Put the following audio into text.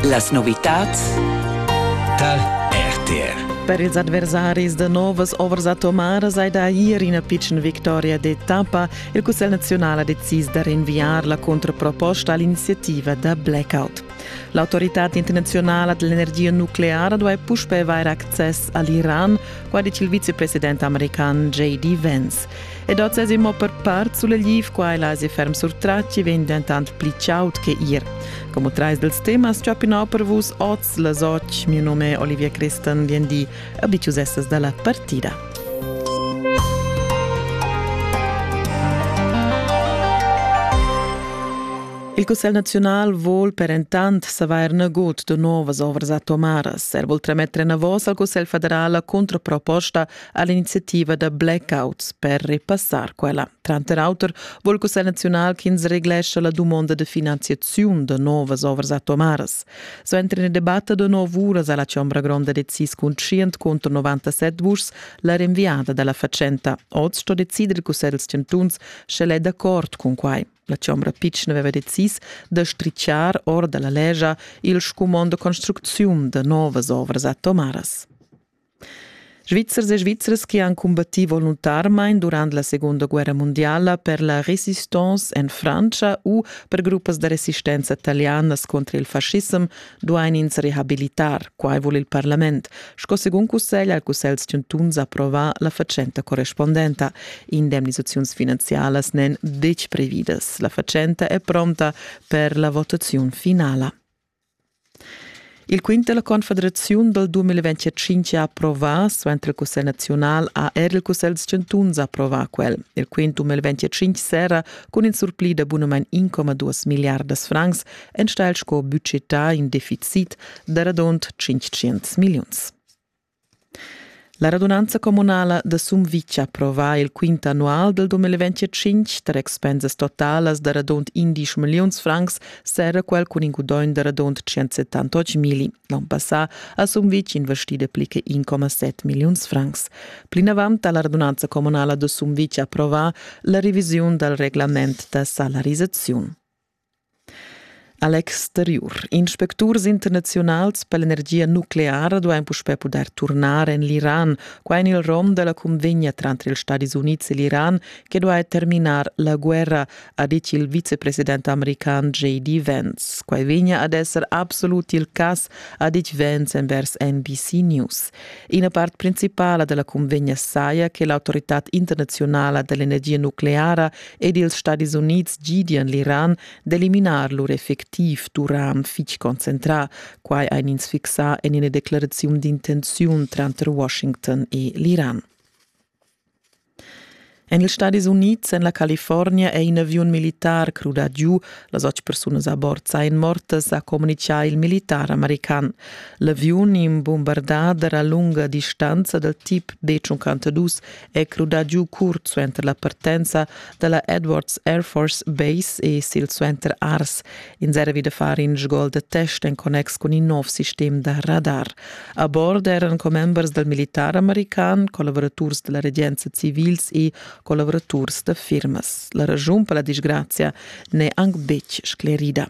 Las novitads tar RTR. Per ils adversaris da novas ovras atomaras hai da ir ina pitschna victoria d'etappa. Il Cussegl naziunal ha decis da rinviar la contraproposta all'iniziativa da blackout. L'autorità internazionala dell'energia nucleara duai puspè avair access a l'Iran, quai dice il vicepresident american J.D. Vance. Ed oz es immo per part sulegliv, quai la si ferm surtratgi vegn dentant pli chaud che ir. Como trais dels temas ch'opinau per vus oz las och, mio nome Olivia Christen vien di, abitiusestas dalla partida. Il Cussel Nacional vol per entant savair nagut de novas ovras atomaras. Er vol tremetre navos al Cussel federal la contraproposta a l'iniziativa da blackouts per repassar quella. Tranter auter vul Cussegl naziunal ch'ins reglescha la dumonda de finanziaziun da novas ovras atomaras. So entra in debatte da nov uras alla Chombra Gronda de CIS cun 100 contro 97 vuschs la rinviada dalla facenta. Oz sto decider il Cussegl dels Chantuns, sche è d'accord con quai. La Chombra Pitschen aveva decis da stricciar or dalla legia il scumond de construcziun de novas ovras atomaras. Svizzers e Svizras che han combattì voluntarmain durant la Segunda guerra mondiala per la resistance en Frantscha u per gruppas da resistenza talianas contra il fascissem duain ins rehabilitar. Quai vul il parlament, sco segun cussegl al cussegl chantuns approvà la fatschenta correspondenta. Indemnisaziuns finanzialas n'èn betg previdas. La fatschenta è pronta per la votaziun finala. Il quint dalla confederaziun dal 2025 ha approvà, suenter il cussegl naziunal ha er il cussegl dals chantuns approvà quel. Il quint 2025 serra cun in surpli da bunamain 1,2 milliardas francs enstagl sco budgetà in deficit da radund 500 milliuns. La radunanza communala da Sumvitg approva il quint annual del 2025 tar expensas totalas da radund 11 milliuns francs serra quel cun in gudogn da radund 178 mili. L'on passà ha Sumvitg investì pli che 1,7 milliuns francs. Plinavant ha la radunanza communala da Sumvitg approvà la revisiun dal reglament da salarisaziun. A l'exteriur. Inspecturs internaziunals per l'energia nucleara duain puspè pudair turnar en l'Iran. Quai en il rom da la cunvegna tranter ils Stadis Unids e l'Iran che duai terminar la guerra, ha ditg il vicepresident american J.D. Vance. Quai vegnia ad esser absolut il cas, ha ditg Vance envers NBC News. Ina part principala da la cunvegna saja che l'autoritad internazionala dell'energia nucleara ed ils Stadis Unids gidian l'Iran d'eliminar lur effectiv Turan fitg concentrà, quai ein ins fixà en ina declaraziun d'intenziun tranter Washington e l'Iran. En ils Stadis Unids, en la California, è in aviun militar crudà giu. Las otg persunas a bord sain mortas, ha communitgà il militar american. L'aviun in bumbardà d'era lunga distanza dal tip D52 è crudà giu curt suenter la partenza da la Edwards Air Force Base e silsuenter Ars. Ins era vi da far in sgol da test en connex cun in nov sistem da radar. A bord eran commembers dal militar american, collaboraturs da la regenza civils e collaboraturs da firmas. La ragiun per la disgrazia n'è anc betg sclerida.